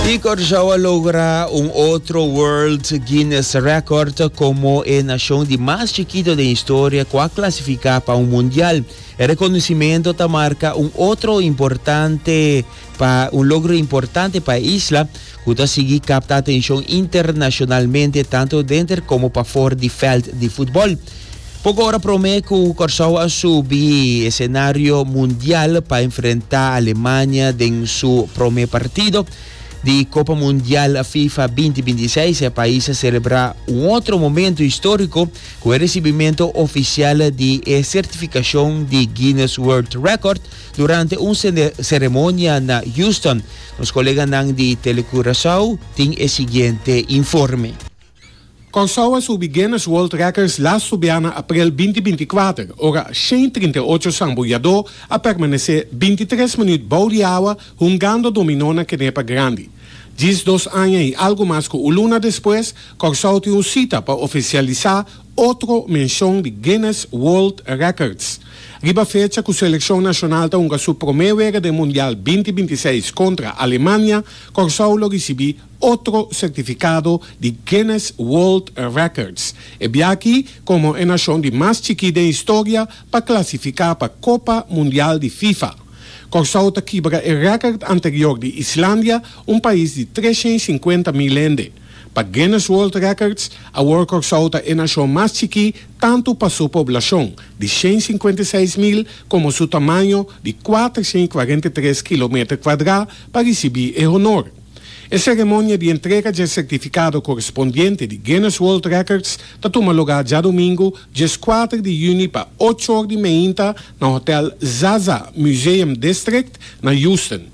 Y Curaçao a logra un otro World Guinness Record como e nacion di mas chikito den historia cu a clasifica pa un Mundial. E reconocimento ta marca un otro importante pa un logro importante pa e isla, ku ta sigui kapta atenshon internashonalmente tantu denter komo pafor di vèlt di futbòl. Poko ora promé ku Kòrsou a subi esenario mundial pa enfrentá Alemania den su promé partido di Kopa Mundial Fifa binti binti seis, e pais a selebrá un otro momentu históriko ku e resibimentu ofisial di e sertifikashon di Guinness World Record, Durante un seremonia na Houston, nos koleganan di Tele Curaçao tin e siguiente informe. Kòrsou a subi Guinness World Records lastu biaha aprel binti binti kuater, ora shen trinta i ocho sambuyadó a permanesé binti tres minuut bou di awa hungando dominó na kenepa grandi. Djis dos aña i algu mas ku un luna despues, Kòrsou tin un sita pa ofisialisá Otro menshon di Guinness World Records riba fecha ku selekshon nashonal ta hunga su promé wega den Mundial binti binti seis kontra Alemania, Kòrsou lo risibí otro sertifikado di Guinness World Records, e biaaki komo e nashon di mas chikí den historia pa klasifiká pa Kopa Mundial di Fifa. Kòrsou ta kibra e rèkòrt anterior di Islandia, un pais di tres shen i sinkuenta mil hende. Pa Guinness World Records, awor Kòrsou ta e nashon mas chikí tantu pa su poblashon di shen i sinkuenta i seis mil komo su tamaño di kuater shen i kuarenta i tres kilometer kuadrá pa risibí e honor. E seremonia di entrega dje sertifikado korespondiente di Guinness World Records ta tuma lugá djadumingu dies kuater di yüni pa ocho or di meinta na Hotèl Zaza Museum District na Houston.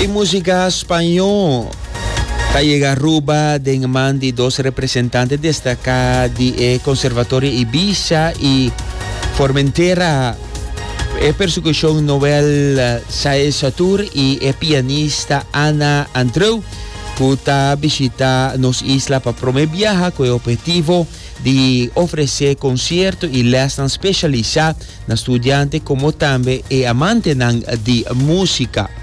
E música Spañó ta yega Aruba den man di dos representante destaká di e Conservatorio Ibiza y Formentera, e percusion Noel Saez Satur y e pianista Ana Andreu. cu ta bishita nos isla pa prome biaha cu e objetivo di ofrece concierto y lesnan specialisa na studiante como tambe e amantenan di musica.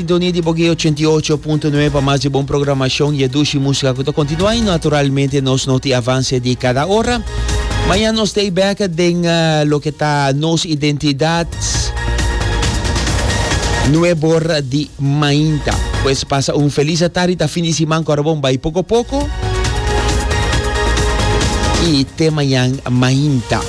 Sintonia di Bogué ochenta i ocho punto nuebe pa mas di bon programashon i e dushi músika ku ta kontinuá i naturalmente nos no tin avanse di kada ora. Mañan nos ta ei bèk den loke ta nos identidat nuebe or di mainta. Pues pasa un felis atardi, ta fin di siman ku ora bon bai poko poko i te mañan mainta.